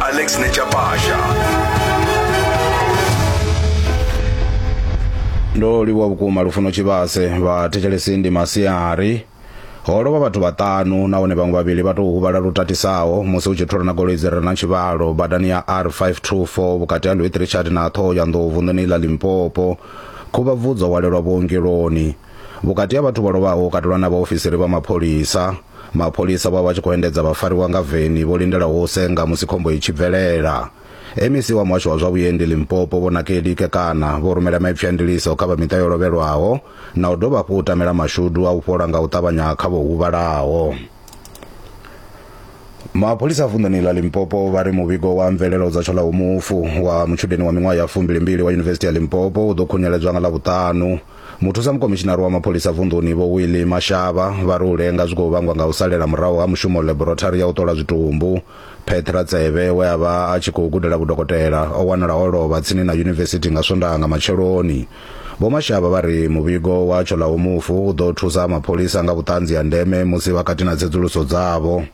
Alex Nechapasha. ndo livhuwa vhukuma lufuno tshivhase vha thetshelesi ndi masiari ho lovha vhathu vhaṱanu nahone vhaṅwe vhavhili vha tou huvhala lu tatisaho musi hu tshi thulana goloi dzi re na tshivhalo badani ya r524 vhukati ha louis richard na ṱhoho ya nḓou vunḓuni ḽa limpopo khuvhabvudzo walelwa vhuongeloni vhukati ha vhathu vho lovhaho ho katelwa na vhaofisiri vha mapholisa Mapholisa vha vha tshi khou endedza vhafariwa nga veni vho lindelaho u senga musi khombo i tshi bvelela. MEC wa muhasho wa zwa vhuendi Limpopo Vho Nakedi Kekana vho rumela maipfi a ndiliso kha vha miṱa yo lovhelwaho na u dovha hafhu u tamela mashudu a u fhola nga u ṱavhanya kha vho huvhalaho. Mapholisa a vunḓuni ḽa Limpopo vha ri muvhigo wa mvelelo dza Tshoḽaho mufu wa mutshudeni wa miṅwaha ya fumbilimbili wa Yunivesithi ya Limpopo u ḓo khunyeledzwa nga Ḽavhuṱanu. Muthusa mukomishinari wa mapholisa vunḓuni Vho Willie Mashaba vha ri u lenga zwi khou vhangwa nga u salela murahu ha mushumo ḽeborothari ya u ṱola zwitumbu. Petra Tsebe we a vha a tshi khou gudela vhudokotela o wanala o lovha tsini na yunivesithi nga Swondaha nga matsheloni. Vho Mashaba vha ri muvhigo wa Tsholaumufu u ḓo thusa mapholisa nga vhuṱanzi ha ndeme musi vha kati na tsedzuluso dzavho.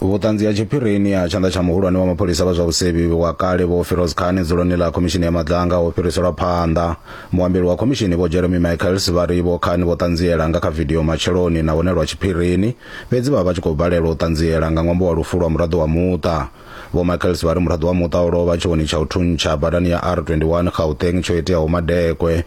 vhuṱanzi ha tshiphirini ha tshanḓa tsha muhulwane wa mapholisa vha zwa vhusevhi wa kale vho firoz khani dzuloni ḽa khomishini ya madlanga ho fhiriselwa phanḓa muambeli wa khomishini vho jeremy michaels vha ri vho khani vho ṱanziela nga kha vidio matsheloni na hone lwa tshiphirini fhedzi vha vha tshi khou balelwa u ṱanziela nga ṅwambo wa lufu lwa muraḓo wa muṱa vho michaels vha ri muraḓo wa muṱa o lovha tshiwoni tsha u thuntsha badani ya r 21 gauteng tsho iteaho madekwe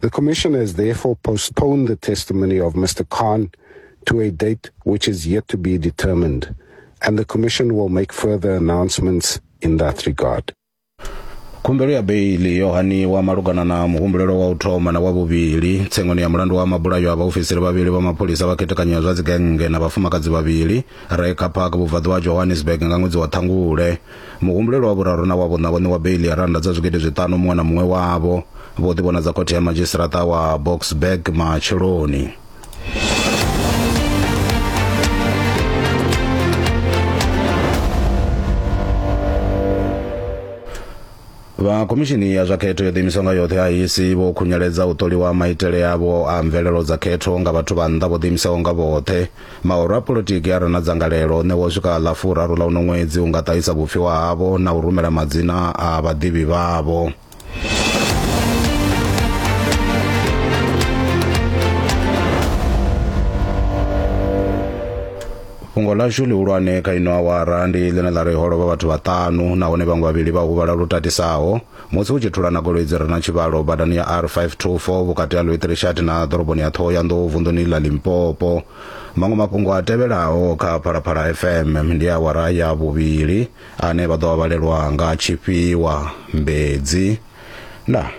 The Commission has therefore postponed the testimony of Mr. Khan to a date which is yet to be determined, and the Commission will make further announcements in that regard. khumbelo ya beili yo haniwa malugana na muhumbulelo wa u thoma na wa vhuvhili tsengoni ya mulandu wa mabulayo a vhaofisiri vhavhili vha mapholisa vha khethekanyo ya zwa dzigennge na vhafumakadzi vhavhili re kha park vhubvaḓuvha ha johannesburg nga ṅwedzi wa ṱhangule Muhumbulelwa wa vhuraru na wa vhuṋa vho ṋewa beiḽi ya rannda dza zwigidi zwiṱanu muṅwe na muṅwe wavho. Vho ḓivhonadza khothe ya madzhisiṱaraṱa wa Boksburg matsheloni. Vha khomishini ya zwa khetho yo ḓiimiswa nga yoṱhe a IEC vho khunyeledza u ṱoliwa maitele avho a mvelelo dza khetho nga vhathu vha nnḓa vho ḓiimisaho nga vhoṱhe. Maoro a polotiki a re na dzangalelo o ṋewa u swika ḽa furaru ḽa uno ṅwedzi u nga ṱahisa vhupfiwa havho na u rumela madzina a vhaḓivhi vhavho. fhungo ḽashu ḽihulwane kha ino awara ndi ḽine ḽa ri ho lovha vhathu vhaṱanu nahone vhaṅwe vhavhili vha huvhala lu tatisaho Musi hu tshi thulana goloi dzi re na tshivhalo badani ya R524 vhukati ha Lwetirishati na ḓoroboni ya Thohoyandou vunḓuni ḽa Limpopo. Maṅwe mafhungo a tevhelaho kha Phalaphala FM ndi awara ya vhuvhili ane vha ḓo a vhalelwa nga Tshifhiwa Mbedzi. Ndaa.